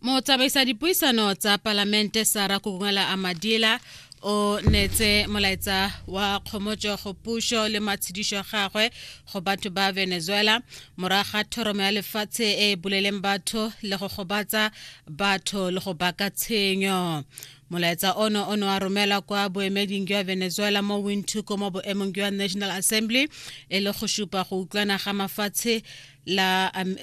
motsamaisa dipuisano tsa palamente sara kukungela amadila o netse molaetsa wa kgomotso go puso le matshedišo gagwe go batho ba venezuela morago ga thoromo ya lefatshe e e buleleng batho le go gobatsa batho le go baka tshenyo molaetsa ono o ne wa romela kwa boemeding jwa venezuela mo windhoek mo boemong jwa national assembly e le go supa go utlwana ga mafatshe la um,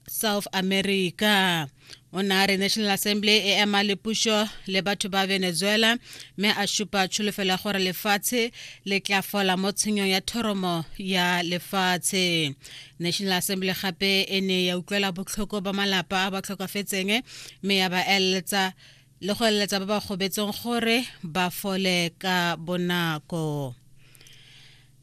south america o ne a re national assembly e ema le pušo le batho ba venezuela mme a šupa tšholofelo ya gore lefatshe le tla fola mo tshenyong ya thoromo ya lefatshe national assembly gape e ne ya utlwela botlhoko ba malapa a ba tlhokafetseng mme ya ba eletsa le go eletsa ba ba gobetseng gore ba fole ka bonako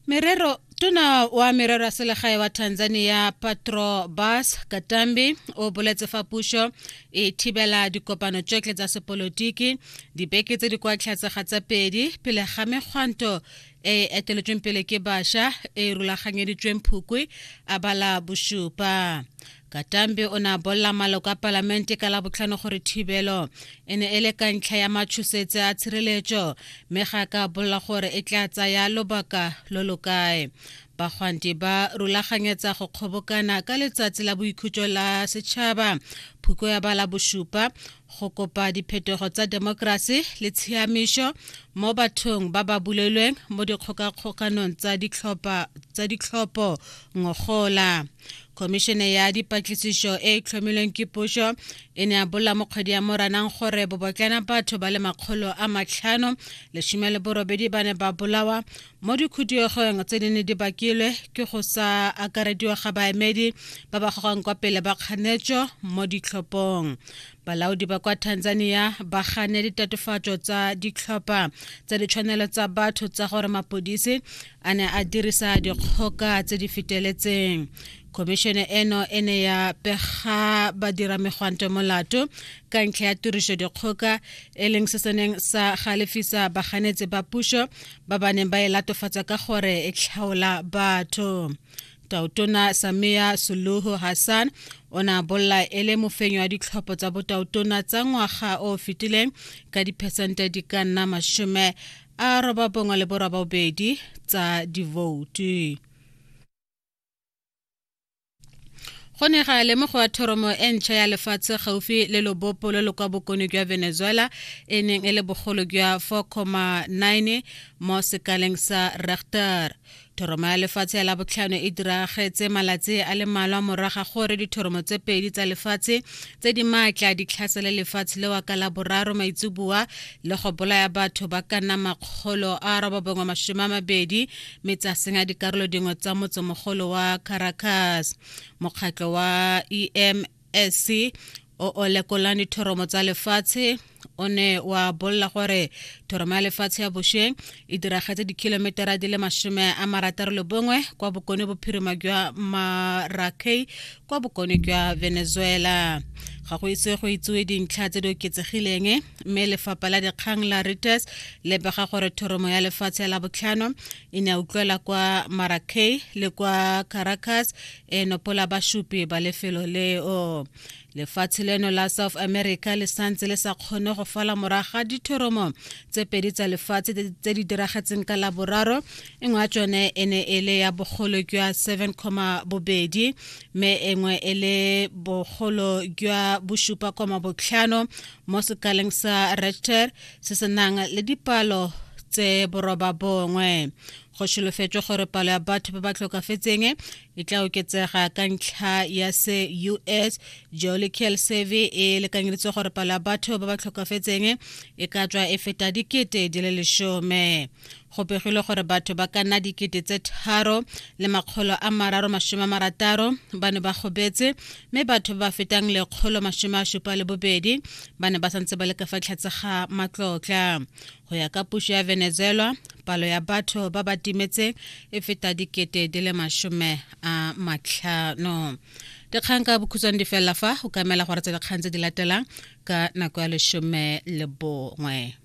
Merero Tona wa merero ya selegae wa Tanzania Patro Bas Katambi o boletse fa puso e thibela dikopano tsotlhe tsa sepolotiki dibeke tse di kwa tlhatse ga tsa pedi pele ga mekgwanto e e eteletsweng pele ke basha e e rulaganyeditsweng phukwi a bala bosupa katambe o ne a bolela maloko a palamente ka labotlhano gore thibelo e ne e le ka ntlha ya matshosetse a tshireletso mme ga ka bolela gore e tla tsaya lobaka lo lo kae bagwanti ba rulaganyetsa go kgobokana ka letsatsi la boikhutso la setšhaba phuko ya bala bosupa go kopa diphetogo tsa demokrasi le tshiamišo mo bathong ba ba bulelweng mo dikgokakgokanong tsa ditlhopho ngogola khomišene ya dipatlisišo e e tlhomilweng ke pušo e ne a bolla mo kgwedi ya moranang gore bobotlana batho ba le makgolo a matlhano lesome le borobedi ba ne ba bolawa mo dikhuduegong tse di ne di bakilwe ke go sa akarediwa ga baemedi ba ba gogwang kwa pele ba kganetso mo ditlhophong balaodi ba kwa tanzania ba gane ditatofatso tsa ditlhopha tsa ditshwanelo tsa batho tsa gore mapodisi a ne a dirisa dikgoka tse di feteletseng khomišene eno e ne ya pega badira megwanto molato ka ntlha ya tiriso dikgoka e leng se seneng sa galefisa baganetsi ba puso ba ba neng ba e latofatsa ka gore e tlhaola batho tautona samia suluhu hassan o ne a bolla e le mofenyo wa ditlhopho tsa botautona tsa ngwaga o fetileng ka diphesente di ka nna masome a roba bongwe le borabobedi tsa divoutu go ne ga lemogo ya thoromo e ntšha ya lefatshe gaufi le lobopo lo lo kwa bokono jwa venezuela e neng e le bogolo jwa 4,9 mo sekaleng sa rechter Thoromo ya lefatshe ya labotlhano e diragetse malatsi a le malwa moraga gore dithoromo tse pedi tsa lefatshe tse di maatla di tlhasele lefatshe lewa ka la boraro maitsuboa le go bolaya batho ba ka nna makgolo a robabongwe masome a mabedi mme tsa senya dikarolo dingwe tsa motsemogolo wa caracas mokgatlho wa em ese o o lekolang dithoromo tsa lefatshe o ne wa bolela gore thoromo ya lefatshe ya bosheng e diragetse dikhilometara di le masome a marataro le bongwe kwa bokone bophirima jwa marakei kwa bokone jwa venezuela ga go itse go itsewe dintlha tse di oketsegileng mme lefapha la dikgang la reuters le bega gore thoromo ya lefatshe la botlhano e ne ya utlwela kwa marakei le kwa caracas e nopola bashupi ba lefelo leo lefatshe leno la south america le santse le sa kgone go fala morago ga dithoromo tse pedi tsa lefatshe tse di diragetseng ka laboraro e nngwe ya tsone e ne e le ya bogolo jwa 7 comma bobedi mme e nngwe e le bogolo jwa bosupa koma botlhano mo sekaleng sa rechter se se nang le dipalo tse boroba bongwe go solofetswe gore palo ya batho ba ba tlhokafetseng e tla oketsega ka ntlha ya se us geological survey e lekanyeditse gore palo ya batho ba ba tlhokafetseng e ka tswa e feta dikete di le lesome go begilwe gore batho ba ka nna dikete tse tharo le makgolo a mararo masome a marataro ba ne ba gobetse mme batho ba ba fetang lekgolo masome a supa le bobedi ba ne ba santse ba le ka fa tlhatse ga matlotla go ya ka puso ya venezuela palo ya batho ba ba timetseng e feta dikete di le masome a matlhano dikgang ka bokhutshwane di felela fa o ka emela gore tse dikgang tse di latelang ka nako ya lesome le bongwe